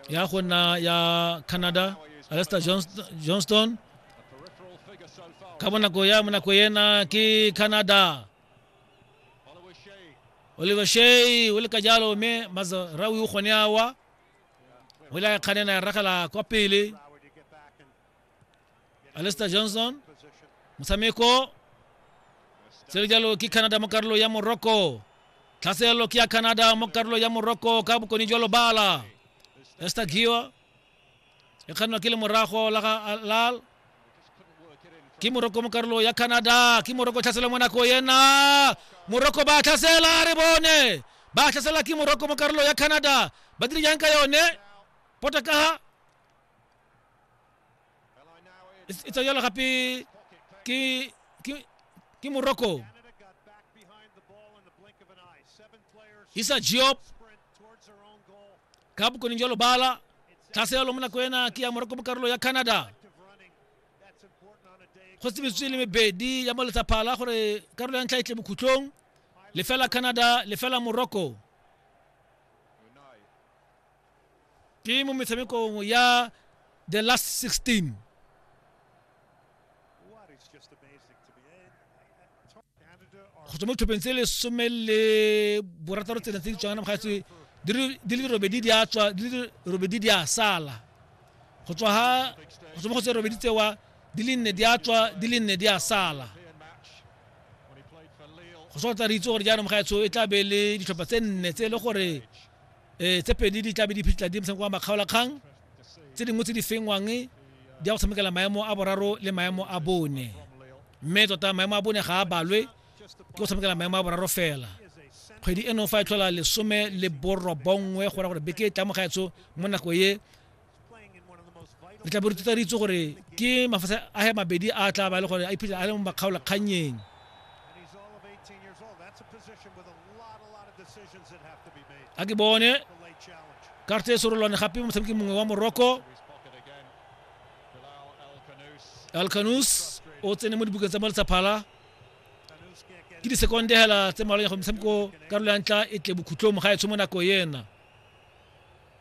ya go nna ya canada alester johnston ka bonako ya monako ena ke canada oliver shay o le ka jalo mme mazarawi o kgone awa o ile a kganena ya ragela kwa pele alester johnson motshameko se le jalo ke canada mo karolo ya morocco tlhaselelo ke ya canada mo karolo ya morocco ka bokone jwa lobala ester giwa e kgannwa ke le morago la ga alal ke moroko mo karolo ya canada ke moroko tlhasela mo nako yena moroko ba tlhasela re bone ba tlhasela ke moroko mo karolo ya canada ba dire jang ka yone potakaga e e tswa jalo gape ke ke ke morocco isa job ka bokoning jwa lobala tlase yalo mo nako ena ke ya morocco mo karolo ya canada go tsebisitswe le mebedi ya moletsaphala gore karolo ya ntlha e tle bokhutlong lefela canada lefela morocco ke mo metshamekong ya the last 16 go tswa mo ditlhopheng tse lesome le borataro tsena tse di tswang ga tswe di le robedi di a tswa di le robedi di a sala go tswa ha go tswa mo go tse robedi tsewa di le nne di a tswa di le nne di a sala go tswa tsa re itse gore jaanong ga tsho e tla be le ditlhopha tse nne tse e le gore um tse pedi di tlabe di phitlha di motshameko wa makgaolakgang tse dingwe tse di fengwang di ya go tshamekela maemo a boraro le maemo a bone mme tota maemo a bone ga a balwe ke go tshamekela maemo a boraro fela kgwedi eno fa e tlhola lesome le borobongwe go ra gore beke e tla mo gaetso mo nako e re tla bo re tutaritse gore ke mafase a he mabedi a tla ba le gore a iphitlhela a le mo makgaolakgannyeng a ke bone karte e sorolwane gape motshameki mongwe wa morocco alcanus o tsene mo dibukeng tsa mo letshaphala ke disekonde hela tse mmalwanya go motshameko karolo ya ntla e tle bokhutlong ga e tsho mo nako ena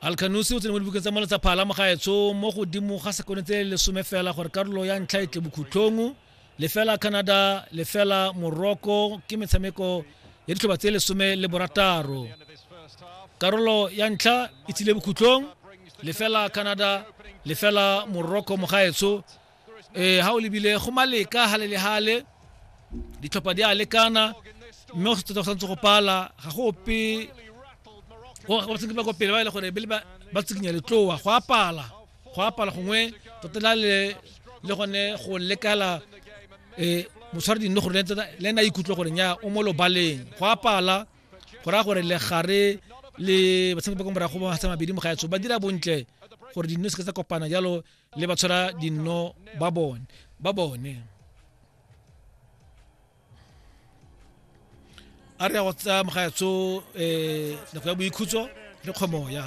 alkanose o tsene mo dibukeng tsa mono tsa phala mogaetsho mo godimo ga sekone tse lesome fela gore karolo ya ntlha e tle bokhutlhong lefela canada lefela morocco ke metshameko ya ditlhoba tse lesome le borataro karolo ya ntlha e tsile bokhutlhong lefela canada lefela morocco mogaetsho eh ha o lebile go maleka hale le hale ditlhopha di a lekana mme go se tota go santse go pala ga go ope go tsenge ba kwa pele ba ile e gore bele ba tsikinya letloa go a pala go a pala gongwe tota la le le gone go lekala eh motshwari dinne gore le ena ikutlwa gore nya o mo lobaleng go a pala go raya gore legare le batshameki ba kwa morago ba mabedi mo gaetso ba dira bontle gore dinne se ka tsa kopana jalo le ba tshwara dinno ba bone ba bone a re ya go tsaya mogaetso um nako ya boikhutso le kgomoya